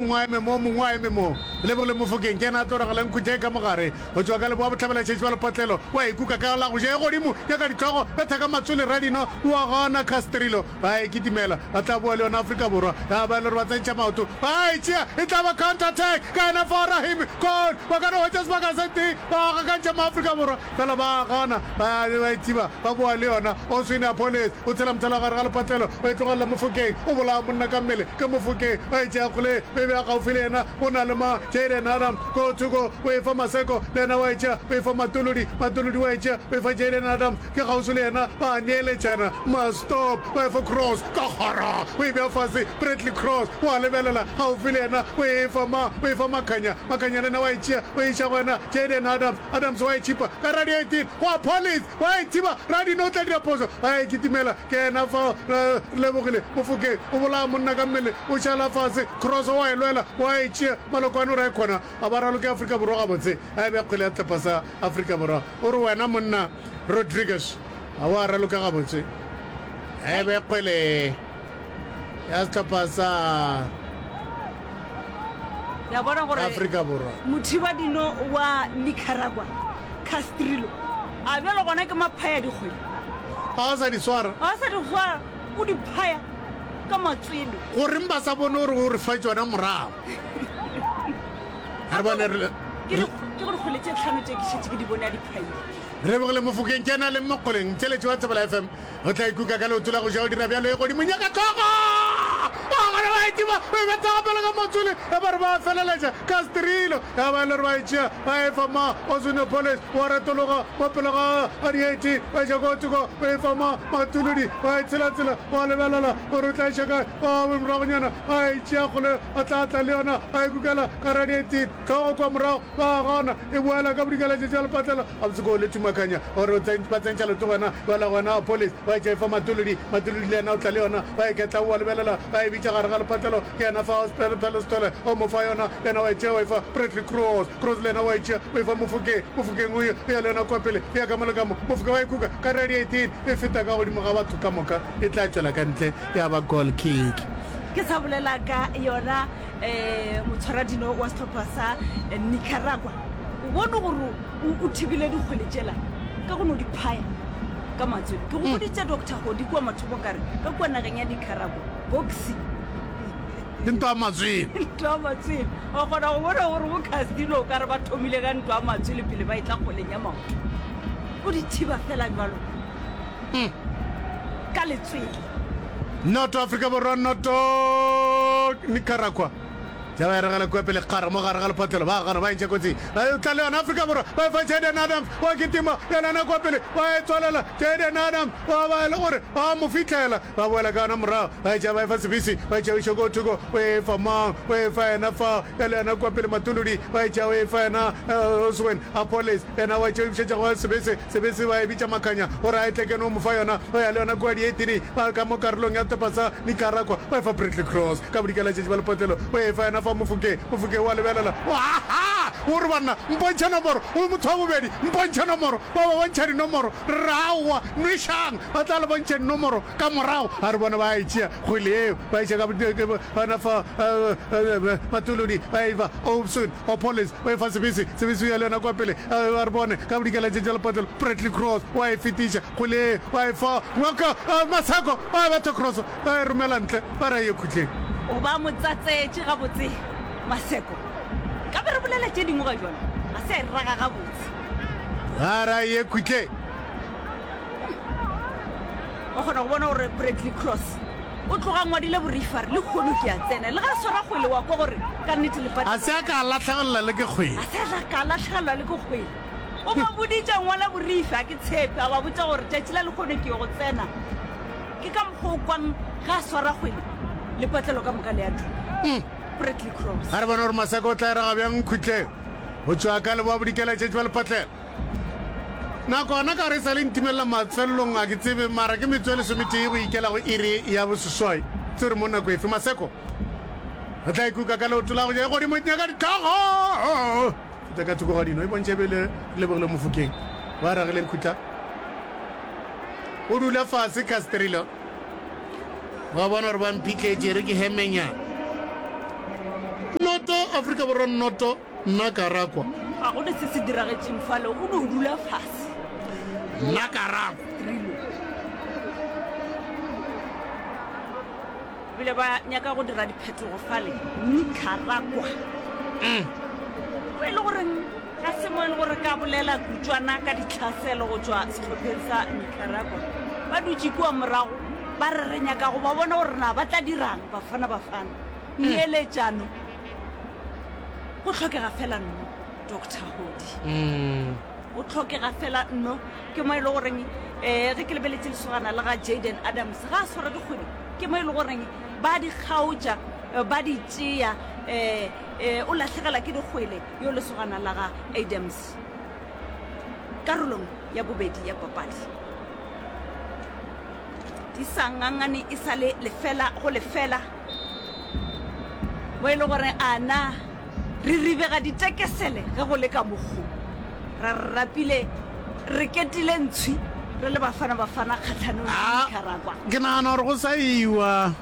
mongwe a eme mo, mongwe a eme mo. Lebogile Mofokeng, ke yena a tlo ragela nkhutša ye ka mo gare. Go tšwa ka leboa bohlabelašetši bja lepotlelo, o a e kuka ka la go ja ye godimo, nyaka ditlogo, betha ka matswele Radino, o a gana Castrillo, ba a e kitimela, ba tla boa le yona Afrika Borwa, ya ba e le gore ba tsentšha maoto, ba a e tšea, e tla ba counter attack, ka yena Fo Rahimi, Cole, ba ka no hwetša sebaka se tee, ba gakantšha Maafrika Borwa. Fela ba a gana, ba ba e thiba, ba boa le yona. Oswine Apolles o tshela mothala gare ga lepatlelo, o e tlogelela mo fokeng, o bolaya monna ka mmele ka mo fokeng, ba e tšea kgole be bea gaufi le yena. Go na le ma Jayden Adam ko thoko, o e fa maseko, le yena wa e tšea, o e fa Matolodi, Matolodi wa e tšea, o e fa Jayden Adam ke kgauswi le yena, ba a neeletšana, ma stop, ba e fa Cross ka kgoro, o e bea fase, Bradley Cross o a lebelela gaufi le yena, o e fa ma, o e fa Makhanya, Makhanya le yena wa e tšea, o e iša go yena Jayden Adam. Adams wa e tšhipa ka ra di 18 go Apollis wa e thiba ra dino o tla dira phoso a e kitimela ke ena fao re lebogile Mofokeng o bolaya monna ka mmele o šala fase Cross wa e lwela wa e tšea Malokwane o ra e kgona a ba raloke Afrika Borwa gabotse a e bea kgwele ya tlepa sa Afrika Borwa o re wena monna Rodriguez a wa raloka gabotse a e bea kgwele ya sehlopha sa ya bona gore Afrika Borwa. mothibadino wa nicaragua castrilo a bjalo gona ke maphaya dikgwedi Ga o sa di swara. ga sa dikgwa o di phaya ka matswele Goreng ba sa bone gore o re fa tšona morago? Re bone re ke di- ke go dikgwele tše tlhano tše ke šetse ke di bone a di phaile re bogele mofokeng ke na le mokgoleng tšheletše wa tsebela fm O tla ikuka ka leoto la go ja o dira bjalo e godimong ya ka hlogo. Ba gona ba etima, ba e bethaga pele ga motswele, e ba re ba feleletša ka Strilo. Ya ba e le re ba e tšea, ba e fa ma Osinopolis, wa retologa mo pele ga ga dieti, ba eša kotsi kwa, ba e fa ma Matuludi, ba e tshelatsela, ba lebelela gore o tla eša kae. Ba be moragonyana ba e tšea kgole, ba tla tla le yona, ba e kukela ka radiating hlogo kwa morago. Ba gona e boela ka bodikaletše tša lepatlela gabotse ko le tumakanya gore ba tsentša leto gona ba la gona police ba etša efa matolodi matolodi le yena o tla le yona ba e ketla o wa lebelela ba e bitša gare ga lepatlelo ke yena fa hospital pelostole o mo fa yona le yena wa etšea wa efa Bradley Cross Cross le yena wa etšea o efa mofokeng mofokeng o ya le yona kwa pele o ya ka mo le ka mo mofoka wa e kuka ka radiating e feta ka godimo ga batho ka moka e tla tšwela ka ntle ya ba goal kick ke sa bolela ka yona um motshwaradino wa setlhopha sa nicaragua o bone gore o thibile dikgwele tšela ka go no di phaya ka matswele ke go boditse doctor godi kua mathomo kare ka kua nageng ya nicaragua boxi ke ntwa matswele ntwa matswele o kgona go bona gore bo casino o kare ba thomile ka ntwa matswele pele ba e tla kgoleng ya maoto o di thiba fela jalo ka letswele Noto Afrika Borwa Noto Nicaragua Java ya regela kua pele kgara mo gare ga lephothelo ba gana ba entšha kotsi ba e tla le yona Afrika Borwa ba e fa Jayden Adams wa kitima yelana kua pele ba e tswalela Jayden Adams wa ba e le gore ba mo fitlhela ba boela ka yona morago ba e tšea ba e fa Sebisi ba e tšea o šoko o thoko o e fa mang o e fa yena fa ya le yona kua pele Matuludi ba e tšea o e fa yena Oswen Apolis yena wa e tšea o e bušetša go Sebisi Sebetsi ba e bitša makanya gore a e tle keno mo fa yona go ya le yona kua dietini ba ka mo karolong ya topa sa Nicaragua ba e fa Prickly Cross ka bodika la tšetši ba lepotlelo go e fa yona fa mofoke mofoke o a lebelela o a ha o re banna mpontšhe nomoro o motho wa bobedi mpontšhe nomoro ba ba bontšha dinomoro re re aowa nwešang ba tla le bontšheng nomoro ka morago a re bona ba e tšea kgwele yeo ba e tšea ka yona fa matolodi ba e fa Obson O Polis, o efa sebese, sebese o ya le yona kwa pele ga a re bone, ka bodikela tše tša lepatlelo, Bradley Cross o a e fetiša kgoleng, o a e fa Walker, Masako o a betha Cross a e romela ntle, ba re a ye khutleng. O ba mo tsatsetše gabotse Maseko, ka be re bolela tše dingwe ga jwale, ga se a e raga gabotse. Ba re a ye khutleng. Wa kgona go bona gore Bradley Cross o tloga ngwadile borifa re le kgono ke a tsena le ga swara kgwele wa kwa gore ka nnete lefatše a se a ka latlhegelelwa le ke kgwele a se a ka latlhegelelwa le ke kgwele o ba boditša ngwana borife a ke tshepe a ba botša gore tšatši la lekgono ke go tsena ke ka mokgwa o kwang ga a swara kgwele lepatlelo ka moka le ya duka mm. ga re bona gore maseka o tla erega bjang khutleng go tšwa ka leboa bodikela tšetši ba lepatlelo nako gona ka gore e sa le ntimelela mafelelong a ke tsebe mara ke metso e lesometee go ikela go iri ya boseswai tse re mo nako efe maseko re tla ikuka ka leoto la go ja e godimo nyaka ditlhogo feta ka thoko ga dino e bontšha ebele re lebogile mofokeng ba ragileng khutla o dula fase castrilo ba bona gore ba mphitletse re ke hemenya noto aforika borwa noto Nna ka ra kwa. Ga go ne se se diragetšeng fale, o ne o dula fase. Nna ka ra kwa. Rilo. Bile ba nyaka go dira diphetogo fale. Nni ka ra kwa. Mm. Go e le goreng ga se mo e le gore ka bolela kutswana ka ditlhaselo go tšwa sehlopheng sa Nicaragua. Ba dutše kua morago ba re re nyaka go ba bona gore na ba tla dirang Bafana Bafana. Neeletšano. go tlhokega fela nno doctor godi mm. o tlhokega fela nno ke mo e le goreng um ge ke lebeletse lesogana le ga jaden adams ga a swara dikgwedi ke mo e le goreng ba di kgaotša eh, ba di tšea um o latlhegela ke dikgwele yo lesogana la ga adams karolong ya bobedi ya papadi di sa ngangane e sa le lefela go lefela mo e le gore ana re ribega ditekesele ge go le ka mokgo ra re rapile re ketile ntshwi re le bafana bafana kgatlhanong le ah, Nicaragua ke nagana gore go sa iwa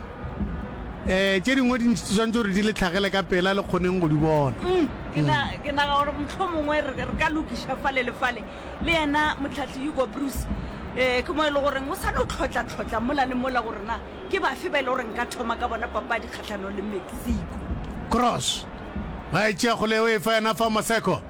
eh tše dingwe di tshwanetse gore di le tlhagele ka pela le kgoneng go di bona mm, ke naga gore motlho mongwe re ka lokiša fale le fale le yena motlhatlhi hugo bruce um ke mo e le goreng o sa no tlhotla-tlhotla mola le mola gore na Ke bafe ba e le gore nka thoma ka bona papadi kgatlhanong le Mexico? Cross, ba e tšea kgole o e fa yena Famo Seko.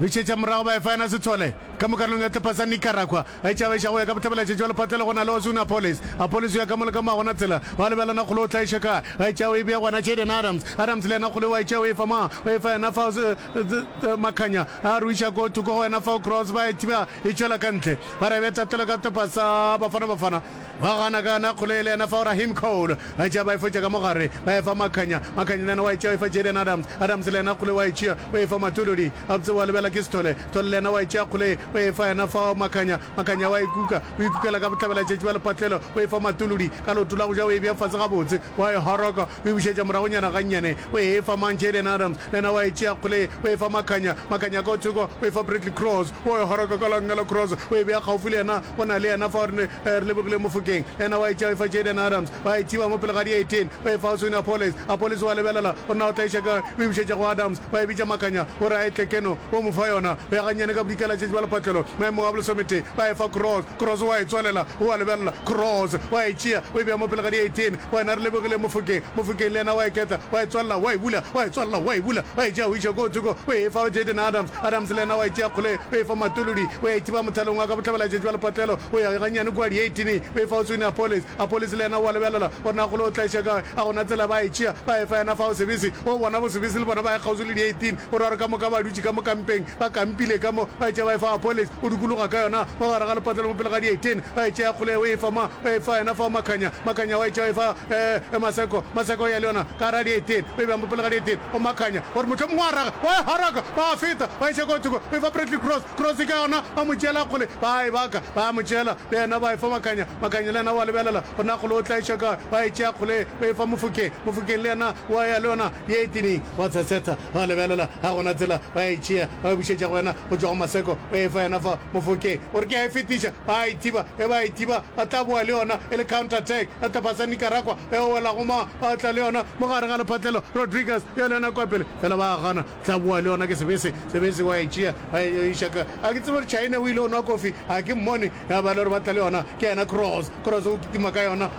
O e šetša morago ba e fa yena Sithole ka mo karolong ya tlepa sa Nicaragua. A e tšabagiša go ya ka bothebelatšatši bja lepatlelo go na le Ozuna Apolis. Apolis o ya ka mo le ka mo a bona tsela. Ba lebelana kgole o tlaiše kae. A e tšea o e bea go yena Jayden Adams. Adams le yena kgole o a e tšea o e fa mang? O e fa yena fao Sth Makhanya. A ruiša ko thoko go yena fao Cross ba e thiba e tšwela ka ntle. Ba re bea tatelo ka tlepa sa Bafana Bafana. Ba gana ka yona kgole yela yena fao Raheem Cole ba e tšea ba e fotša ka mo gare ba e fa Makhanya, Makhanya le yena wa e tšea wa e fa Jayden Adams, Adams le yena kgole wa e tšea wa e fa Matododi, gabotse wa lebela ke Sithole, Sithole le yena wa e tšea kgole ye wa e fa yena fao Makhanya, Makhanya wa e kuka o e kukela ka bohlabela tšatši bja lepatlelo wa e fa Matolodi ka leoto la go ja wa e bea fase gabotse. Wa e horoka, o e bušetša moragonyana gannyane, o e fa mang? Jaylen Adams. Le yena wa e tšea kgole ye, o e fa Makhanya. Makhanya ka go thoko, o e fa Bradley Cross. Wo e horoka ka langelo, Cross o e bea kgaufo le yena, o na le yena fao, re ne re lebogile Mofokeng. Le yena wa e tšea, o e fa Jaylen Adams. Wa e thiba mo pele ga dieiteen, o e fa Oswin Appollis. Appollis wa lebelela, o nna o tlaiša kae, o e bušetša go Adams. Wa e bitša Makhanya, o re a e tle keno, o mo fa yona. O ya gannyane ka bodikela tše tšebjalo phatlelo, maemong a bolesometee, wa e fa Cross. Cross wa e tswalela, o a lebelela, Cross wa e tšea, o e bea mo pele ga di-eighteen, wena re lebogile Mofokeng, Mofokeng le yena wa e ketla, wa e tswalela, wa e bula, wa e tswalela, wa e bula, wa e tšea o iša koo thoko, o e fa go Jayden Adams, Adams le yena wa e tšea kgoleng, o e fa Matolodi, o ya e thiba mothalong wa ka bohlabela-tšatši bja lepatlelo, o ya gannyane kua di-eighteen, o e fa go Sony Appolis, Appolis le yena o a lebelela, gore na kgole o tla iša kae, a gona tsela, ba e tšea, ba e fa yena fao Sebisi, o bona bo Sebisi le bona ba ya kgauswi le di-eighteen, o ra gore ka moka ba dutše ka mo kampeng, Ba kampile ka mo, ba etšea ba efa Apoles, o dukologa ka yona mo gare ga lepatla le mo pele ga dietene, ba etšea kgole o efa ma, o efa yena fa Makhanya, Makhanya wa etšea o efa e, e Maseko, Maseko o ya le yona ka gare ga dietene, o e bea mo pele ga dietene go Makhanya, gore mohlomong wa raga, wa e haraka, ba a feta, ba iša kwa thoko, o efa Bradley Cross, Cross ka yona, ba mo tšeela kgole, ba a e baka, ba a mo tšeela le yena ba efa Makhanya, Makhanya le yena wa lebelela gore na kgole o tla iša kae, ba etšea kgole o efa Mofokeng, Mofokeng le yena wa ya le yona, Ye e tini, ba tshetsetha, ba lebelela, ga go na tsela, ba ya e tšea, ba e bušetša go yena go tšwa go maseko, o e fa yena fa mofokeng. O re ke a e fetiša, ba a e thiba, ge ba e thiba, ba tla bowa le yona e le counter attack, re tla phasa Nicaragua, ge o wela go mang, ba tla le yona mo gare ga lephatlelo, Rodriguez yo le yena kwa pele, fela ba a gana, re tla bowa le yona, ke sebese, sebese wa e tšea, ba e yo iša ka, ga ke tsebe gore Chaine o ile o nwa kofi, ga ke mmone, ge a ba le gore ba tla le yona, ke yena Kroos, Kroos o kitima ka yona,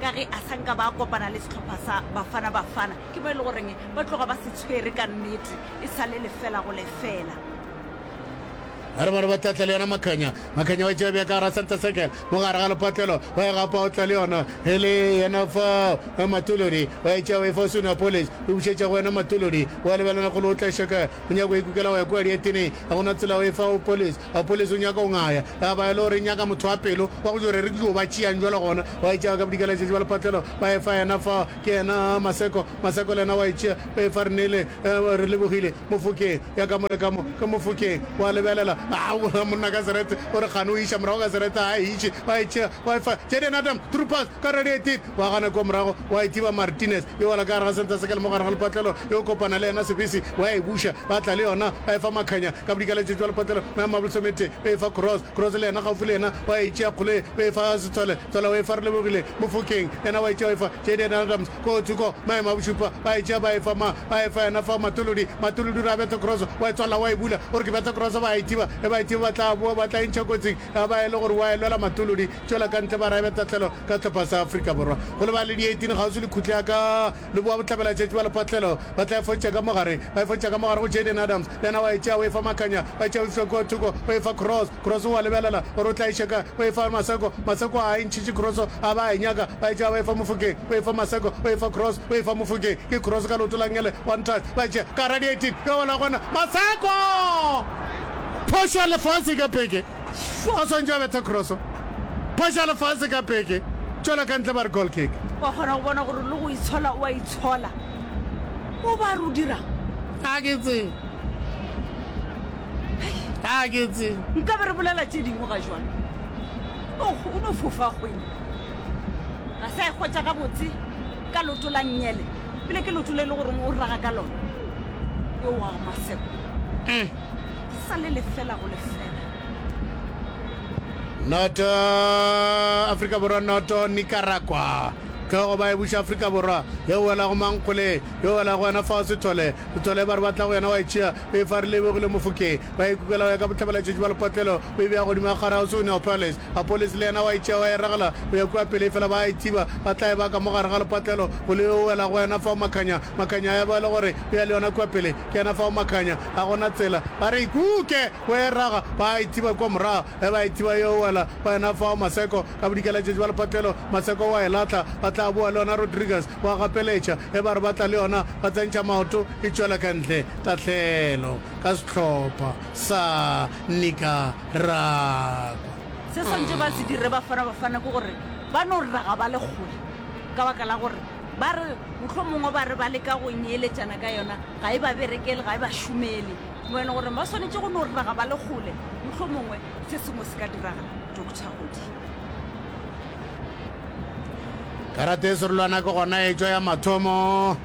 ka ge a sa nka ba kopana le sehlopha sa Bafana Bafana ke mo e le goreng ba tloga ba se tshwere ka nnete e sa le lefela go lefela. Ba re ba re ba tlatla le yona Makhanya. Makhanya wa tšea bja ka gara center circle mo gare ga lepatlelo wa e gapa o tla le yona e le yena fao eh, Matolodi wa e tšea wa e fa Sune Apolles o e bušetša go wena Matolodi wa lebelana golo o tla shoka o nyaka go ikukela go ya kua dietene ga gona tsela o e fa Apolles Wa polese o nyaka go ngaya. Ya ba e le gore e nyaka motho wa pelo, wa go tšwa gore re ke yo ba tšeang bjalo gona. Wa e tšea ka bodika letšatši ba lephatlelo, ba e fa yena fao. Ke yena a, Maseko. Maseko le yena wa e tšea, ba e fa Renele. Ya ba, Re lebogile. Mo fokeng. Ya ka mo le ka mo. Ka mo fokeng. Wa lebelela. Aowa, monna ka serete. O re kgane o iša morago ka serete. Ga a e iše. Wa e tšea, wa e fa Jaden Adams, Troopers, ka radio e tee. Wa gana kua morago, wa e thiba Martinez, yo wela ka gare ga center circle mo gare ga lepatlelo, yo kopana le yena sebese, wa e buša, ba tla le yona, ba e fa Makhanya, ka bodika le tšetšwa lepatlelo, mo ya Mablosomete, o e fa Cross, Cross le yena gaufi le yena, wa e tšea Kgole, o e fa Setsole, Tsole o e fa Relebogile, Mofokeng, yena wa e tšea o e fa Jayden Adams, koo thoko, mo ya Mabošupa, ba e tšea ba e fa mang, ba e fa yena fa Matolodi, Matolodi o re a bethe Cross, wa e tswalela wa e bula, o re ke bethe Cross ba e thiba, e ba e thiba ba tla boa ba tla e ntšha kotsing, Ga ba e le gore wa e lwela matolodi, tšwela ka ntle ba raebe tahlelo ka sehlopha sa Afrika Borwa. Go lebala le di 18 kgauswi le khutla ka Leboa bohlabela tšatši ba le patlelo ba tla e fotša ka mogare. Ba e fotša ka mogare go Jayden Adams, le yena wa e tšea o e fa Makhanya, ba e tšea o e fiwa kua thoko o e fa Cross. Cross o a lebelela gore o tla e šeka o e fa Maseko, Maseko a e ntšhitše Cross a ba a e nyaka ba e tšea ba e fa Mofokeng o e fa Maseko o e fa Cross o e fa Mofokeng ke Cross ka leoto la ngele one touch ba e tšea ka hara di 18 e wela gona Maseko! Phošo ya lefase ka peke. O swantše a betha kroso. Phošo ya lefase ka peke. Tšwela ka ntle ba re goal kick. Wa kgona go bona gore le go itshola o a itshola. O ba re o dirang? A ke tsebe. A ke tsebe. Nka be re bolela tše dingwe ga jwalo. Oh, o no fofa kgwele. Ga sa e kgwetša gabotse ka loto la nnyele. pele ke loto le le goreng o raga ka lona yo wa maseko mm. sa le lefela go lefela noto afrika borwa noto nicaragua tlhogo ba e buša afrika borwa ye o wela go mankgole yo o wela go wena fa o sethole sethole ba re batla go yena wa e tšea Be fa re lebogile Mofokeng, ba e kukela go ya ka bohlabelatšatši bja lepatlelo, ba e bea godimo ga kgare gauswi go Neopolis. Apolesi le yena wa e tšea wa e regela go ya kua pele efela ba a e tsiba, ba tla e baka mo gare ga lepatlelo, go le yo o wela go wena fao makhanya, makhanya a ya ba e le gore o ya le yona kua pele, ke yena fao makhanya, ga go na tsela, ba re e kuke go e rega, ba a e tsiba kua morago, ge ba e tsiba yo o wela go wena fao Maseko, ka bodikalatšatši bja lepatlelo, Maseko o a e lahla, ba tla bowa le yona Rodrigues. Wa gapeletša, ge ba re ba tla le yona, ba tsentšha maoto, e tšwela ka ntle. Tahlehelo, ka sehlopha sa Nicaragua. Se ba swanetše ba se dire Bafana Bafana ke gore ba no raga ba le kgole ka baka la gore ba re mohlomongwe ba re ba leka go nyeeletšana ka yona ga e ba berekele, ga e ba šomele. Mo e leng gore ba swanetše go no raga ba le kgole, mohlomongwe se sengwe se ka diragala. Doctor Hodi. karate e serolwana ke gona e tšwa ya mathomo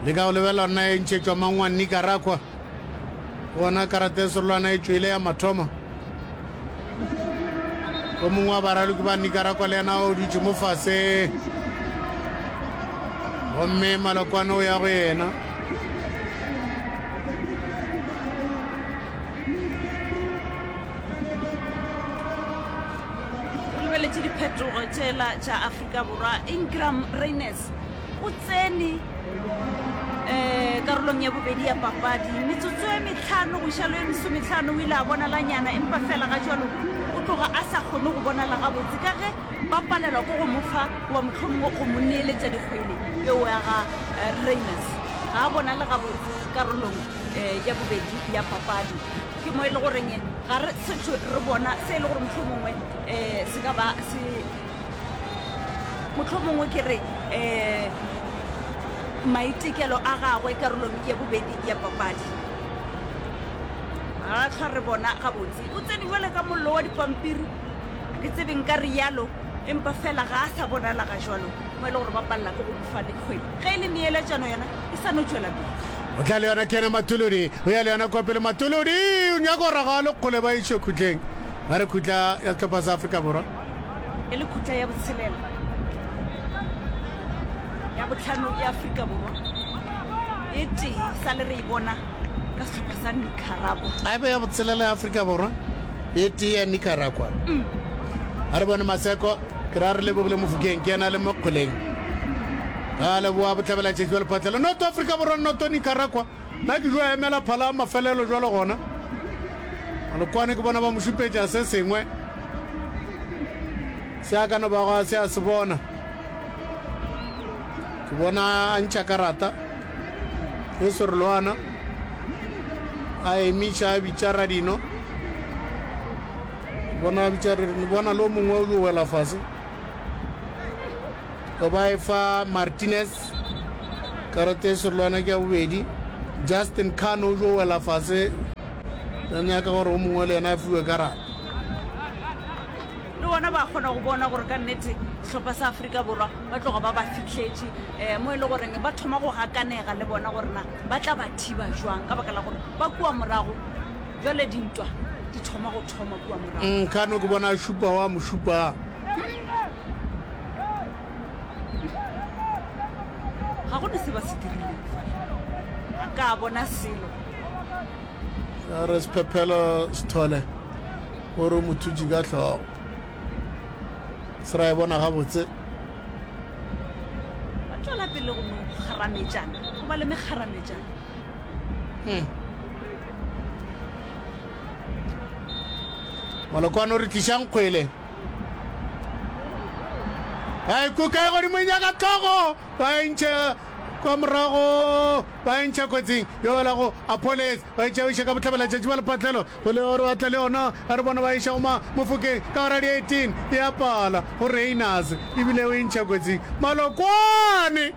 le ka go lebela nna e ntšhetšwa mangwa nicaragua gona karate e serolwana e tšwele ya mathomo o mongwe wa baraloki ba nicaragua le yena o dutše mo fase gomme malokwane o ya go yena lebeletše diphetogo tšela tša afrika borwa ingram raines o tsene um karolong ya bobedi ya papadi metsotso e metlhano go išalo e mesometlhano o ile a bonalanyana empa fela ga jalo o tloga a sa kgone go bonala gabotse ka ge ba palelwa ko go mofa wa motlhomongwe go mo neeletša dikgwele eo ya ga eh, raines ga a bonale gabotse karolong um ya bobedi ya papadi ke mo e le goreng ga re setho re bona se e le gore motlho mongwe um se ka ba se motlho mongwe ke re um maitekelo a gagwe karolong ya bobedi ya papadi ga tlhwa re bona gabotse o tsene jale ka mollo wa dipampiri ke tsebeng ka rialo empa fela ga a sa bonala ga jalo mo e le gore ba palela ke go mofa le kgwedi ge e le neeletsano yona e sa no tšwela pele. O tla le yona kena Matolodi, o ya le yona kwa pele Matolodi, o nyaka go raga le kgole ba išwe khutleng. Ba re khutla ya setlhopha sa Afrika Borwa. E le khutla ya botshelela ya botlhano ya Afrika Borwa e tee sa le re e bona ka setlhopha sa Nicaragua. A be ya botshelela ya Afrika Borwa e tee ya Nicaragua. Mm. A re bone Maseko. Ke ra re Lebogile Mofokeng ke yena a leng mo Kgoleng. Ga a leboa Bohlabela Tšetši wa Lephatlelo Noto Afrika Borwa Noto Nicaragua. Na ke jwa emela phala mafelelo jwalo gona. Malokwane ke bona ba mo šupetša se sengwe se a ka no bago a se a se bona. Ke bona a ntšha karata e serolwana a emiša a bitša Radino. Bona a bitša re, bona lo mongwe o yo wela fase. Go ba e fa Martinez karata e serolwana ke ya bobedi. Justin Khan o yo wela fase. Re nyaka gore o mongwe le yena a fiwe karata. le bona ba kgona go bona gore ka nnete sehlopha sa aforika borwa ba tloga ba ba fitlhetše um mo e le goreng ba thoma go gakanega le bona gorena ba tla ba thiba jwang ka baka la gore ba kua morago Bjale dintwa di thoma go thoma kua morago. Mm, kano ke bona šupa wa mošupa. Ga go ne se ba se dirileng fa. Ga ka bona selo. Re sephephelo sethole gore mothutši ka tlhogo se ra e bona gabotse ba tšwela pele go mo kgarametšana go ba le mekgarametšana hmm. molokwane o re tlišang kgwele a ikuka e godimo nyaka tlhogo ba entšhe kwa morago ba entšha kotsing yola go apolis ba etša o ka botlhabela tšatši ba lepatlelo go le gore batla le yona a re bona ba eša go mofokeng ka ora di-eighteen ya pala go rainers ebile o entšha kotsing malokwane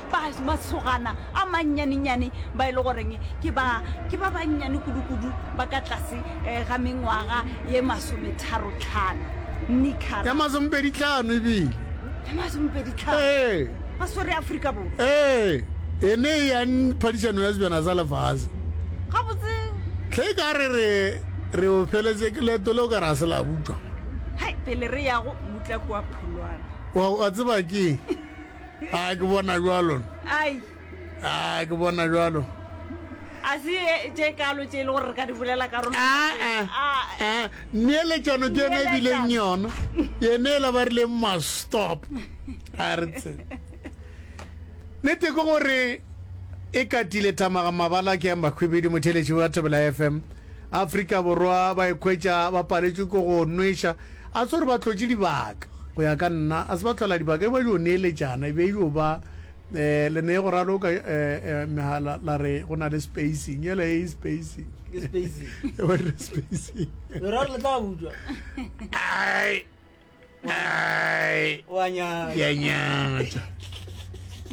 ba masogana a mannyanenyane ba e le goreng ke ba ke ba bannyane kudu-kudu ba ka tlase um ga mengwaga ye masometharo-tlhano ya nikara masomepedi tlhano ebile ya masomepedi tlhano ee ba swere aforika borwa ee e ne e yang phadišano ya sebjana sa lefase gabotse tlhe e ka re re re o feletse ke leto le o ka re a se la buka hai pele re yago mutla kua pholwana wa wa tseba ke a ke bona jalo ai a ke bona jalo a se e- tše kalo tše e le gore re ka di bolela ka rona Ah, aa neeletšano ke yone e bileng yona yene e la ba rileng mastop a re tse nete ke gore e katile thamaga mabala ke ya makhwibidi motheletši wa thobela fm afrika borwa ba ikhwetša ba paletšwe ke go nwešwa A se gore ba hlotše dibaka. Go ya ka nna, a se ba hlola dibaka, e be e yo neeletšana, e be e yo ba, e, le ne go raloka, e, e, megala, la re go na le spacing, yela e, spacing. Ke spacing. E be re spacing. Lo ra re le tla butšwa. Ai, ai. Wa nyatša. Ke a nyatša.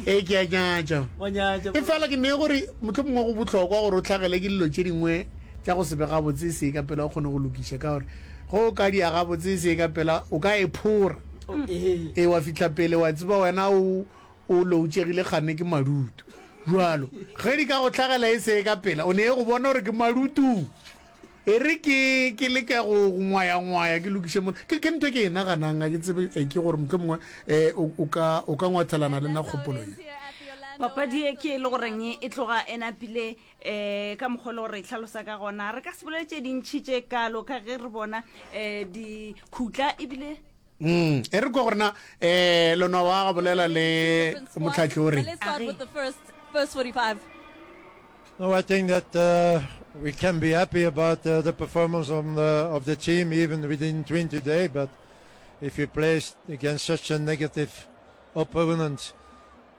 E, ke a nyatša. Wa nyatša. E fela ke ne gore motlho mongwe go bohlokwa gore o tlhagele ke dilo tše dingwe tša go se be gabotse se ka pela o kgone go lokiša ka gore Ge o ka dia gabotse e se ye ka pela, o ka e phora. Ee, wa fihla pele wa tseba wena o o loutšegile kganne ke madutu. Bjalo, ge di ka go hlagela e se ye ka pela, o ne e go bona gore ke madutu. E re ke, ke leke go, go ngwaya-ngwaya ke lokiše mola. Ke, ke ntho e ke e naganang, ga ke tsebe, e, ke gore mohlomongwe e, o, o ka, o ka ngwathelana le nna kgopolo ye. Papadi ye ke e le goreng e tloga e napile um ka mokgwa le gore e tlhalosa ka gona re ka se bolele tše dintšhi tše kalo ka ge re bona um dikhutla ebile Mm, e re kwa gore na eh lona wa ga bolela le motlhatlhi o re. Let's start with the first first 45. No, I think that uh, we can be happy about uh, the performance on the, of the team even within 20 days, but if you play against such a negative opponent,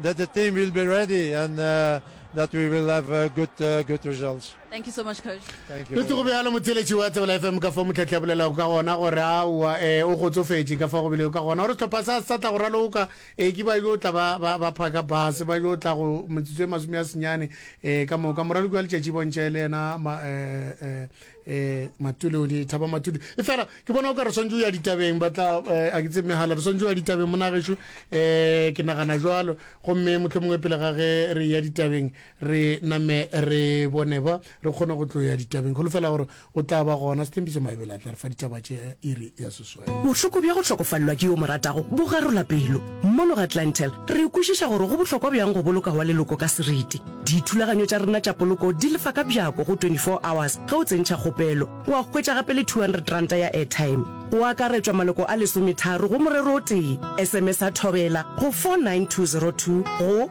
that the team will be ready and uh, that we will have uh, good uh, good results. Thank you so much, coach. Thank you. Letso go bealo motseletši wa tsebela FM ka fa motlhetla bolela ka gona gore a wa e o go tsofetše ka fa go bile ka gona gore tlhopha sa sa tla go raloka e ke ba yo tla ba ba ba phaka bus ba yo tla go metsotso e masome ya senyane e ka moka moraloki wa letšatši bontšhe le yena ma e e eh matule o di thaba matule e fela ke bona o ka re swantse o ya ditabeng batla eh, a ke tse megala re swantse o ya ditabeng monageso eh ke nagana jalo gomme motlho mongwe pele ga ge re ya ditabeng re name re bone ba re kgone go tlo ya ditabeng golo fela gore o tla ba gona setempiso maebele a tla re fa ditaba tše iri ya seso Bohloko bja go hlokofalelwa ke yo o mo ratago bo garola pelo. Mono ga Clientele, re kwešiša gore go bohlokwa bjang go boloka wa leloko ka seriti. Dithulaganyo tša rena tša poloko di lefa ka bjako go 24 hours ge o tsentšha kgopelo. Wa hwetša gape le R200 ya airtime. Go akaretšwa maloko a lesometharo go morero o tee. SMS-a Thobela go 49202 go.